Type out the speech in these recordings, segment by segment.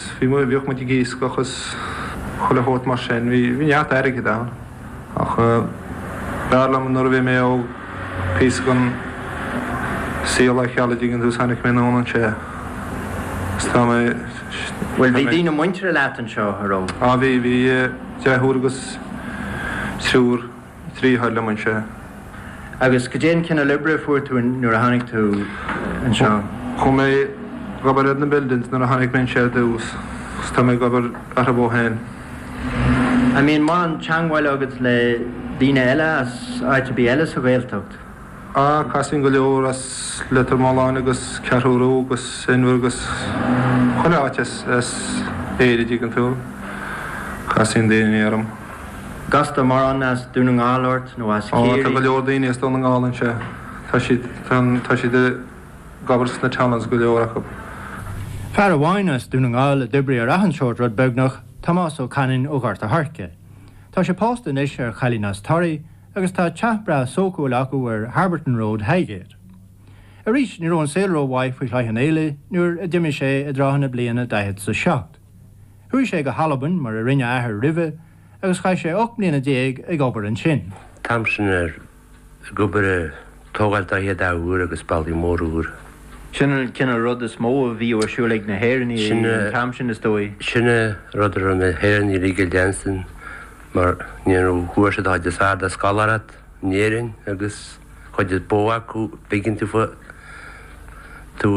Bhí, bhíodh muid ag iascach is chuile shórt mar sin, bhí neart airgid ann. Ach b'fhearr liom nuair a bhí mé óg píosa den saol a fheiceáil an dtuigeann tú, is tháinig mé anonn anseo is tá mé, Bhuel, bhí daoine muinteartha leat anseo, a raibh? Á bhí, bhí deirfiúr agus triúr. deartháir liom anseo. Agus goidé an cineál oibre a fuair tú nuair a tháinig tú anseo? Chuaigh mé ag obair ar na buildings nuair a tháinig mé anseo ar dtús agus tá mé ag obair orthu ó shin. An mbíonn mórán teangmháil agat le daoine eile as áit ar bith eile sa Ghaeltacht? Á casaíonn go leor as Leitir Mealláin agus Ceathrú Rua agus Inbhear agus chuile áit as Éire an dtuigeann tú, casaíonn daoine orm. An gcastar mórán as Dún na nGall ort nó as Ciarraí. Ó tá go leor daoine as Dún na nGall anseo. Tá siad, tá siad ag obair sna tunnels go leor acub. Fear amháin as Dún na nGall a d'oibrigh ar achan seort rud beagnach, Tomás Ó Canainn ó Ghort a' Choirce. Tá sé pósta anois ar chailín as Toraigh, agus tá teach breá sócúil acu ar Harberton Road, Highgate. Arís, ní raibh an saol ró-mhaith faoi Chloich Cheann Fhaola nuair a d'imigh sé i dtrátha na bliana 40 's 7. Chuaigh sé go hAlbain, mar a rinne a athair roimhe, agus chaith sé ocht mbliana déag ag obair ansin. An t-am sin ag obair ar tógáil tithe úra agus bealtaí móra úra. Sin an cineál rud is mó a bhíodh ar siúl ag na hÉireannaigh an t-am sin, is dóigh. Sin é rud a raibh na hÉireannaigh uilig ag déanamh san mar ní bhfuair siad an chuid is fearr de scoláireacht in Éirinn agus cuid is mó acu b'éigean daofa tú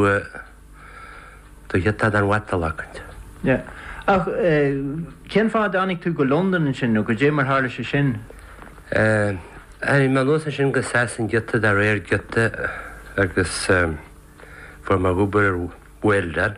do ghiota den mhatal acu. Yeah. Ach cén fáth a dtáinig tú go Londain ansin nó goidé mar tharla sé sin? Tháinig mé anuas ansin go Sasain giota de réir giota agus fuair mé obair ar welding.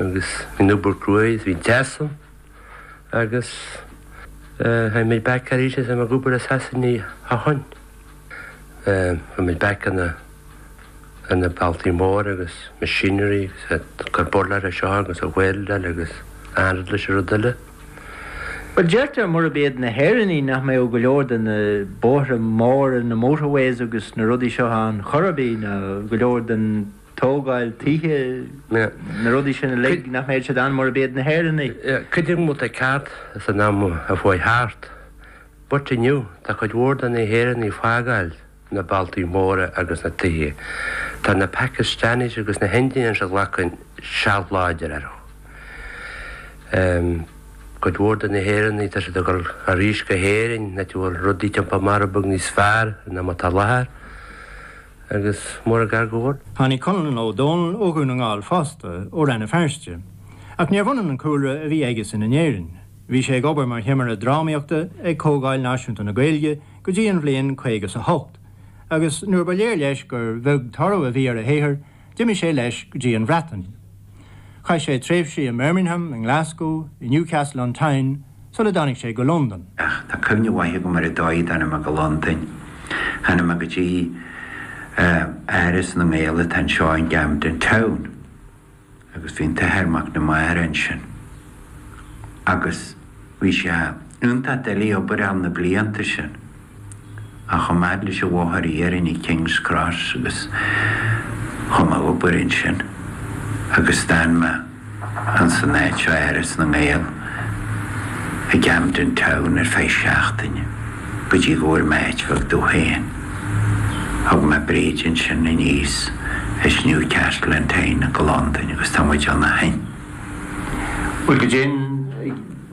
Agus bhí an obair cruaidh agus bhí an teas ann agus tháinig muid back arís agus tá mé ag obair i Sasain ó shin. Chuaigh muid back ar na bealtaí móra agus machinery agus gur burlar é seo agus a bhuildar agus an rud eile is an rud eile. Bhuel deirtear murab iad na hÉireannaigh nach mbeadh go leor de na bóithre móra, na motorways agus na rudaí seo ann chor ar bith ná go leor den tógáil tithe, na rudaí sin uilig nach mbeadh siad ann mura mbeadh na hÉireannaigh. Creidim go bhfuil tú ceart san am a chuaigh thart? But inniu tá cuid mhór de na hÉireannaigh ag fágáil na bealtaí móra agus na tithe. Tá na Pakistanis agus na hIndians ag glacadh seilbh láidir orthu. Cuid mhór de na hÉireannaigh tá siad ag dul arís go hÉirinn, áit a bhfuil rudaí ag tiontú amach rud beag níos fearr ná mar atá láthair. agus mar ghairneoir. Tháinig Conal Ó Domhnaill ó Dhún na nGall fosta, ó Rann na Feirste. Ach níorbh ionann an cúlra a bhí aigesan in Éirinn. Bhí sé ag obair mar thimire drámaíochta ag Comhdháil Náisiúnta na Gaeilge go dtí an bhliain caoga 's a hocht, agus nuair ba léir leis gur bheag toradh a bhí ar a shaothar, D'imigh sé leis go dtí an Bhreatain. Chaith sé tréimhsí i mBirmingham, i nGlascú, i Newcastle on Tyne sula dtáinig sé go Londain. Ach tá cuimhne mhaith agam ar an dóigh a dtáinig mé go Londain. Tháinig mé go dtí Áras na nGael atá anseo i gCamden Town agus bhí an tAthair Mac na Mara ansin agus bhí sé iontach doiligh obair a fháil na blianta sin. Chuaigh mé leis an bhóthar iarainn i King's Cross agus chuaigh mé ag obair ansin agus d'fhan mé ins an áit seo Áras na nGael i gCamden Town ar feadh seachtaine go dtí go bhfuair mé áit bheag domh féin. Thug mé Bríd ansin aníos as Newcastle on Tyne go Londain agus tá muid ann ó shin. Bhuel go deimhin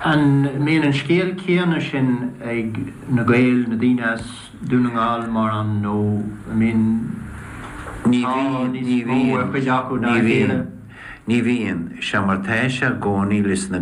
An mbíonn an scéal céanna sin ag na Gaeil, na daoine as Dún na nGall mar an nó an mbíonn tá níos mó ar chuid acu ná a chéile? Ní bhíonn, ní bhíonn. Seo mar tá sé i gcónaí leis na.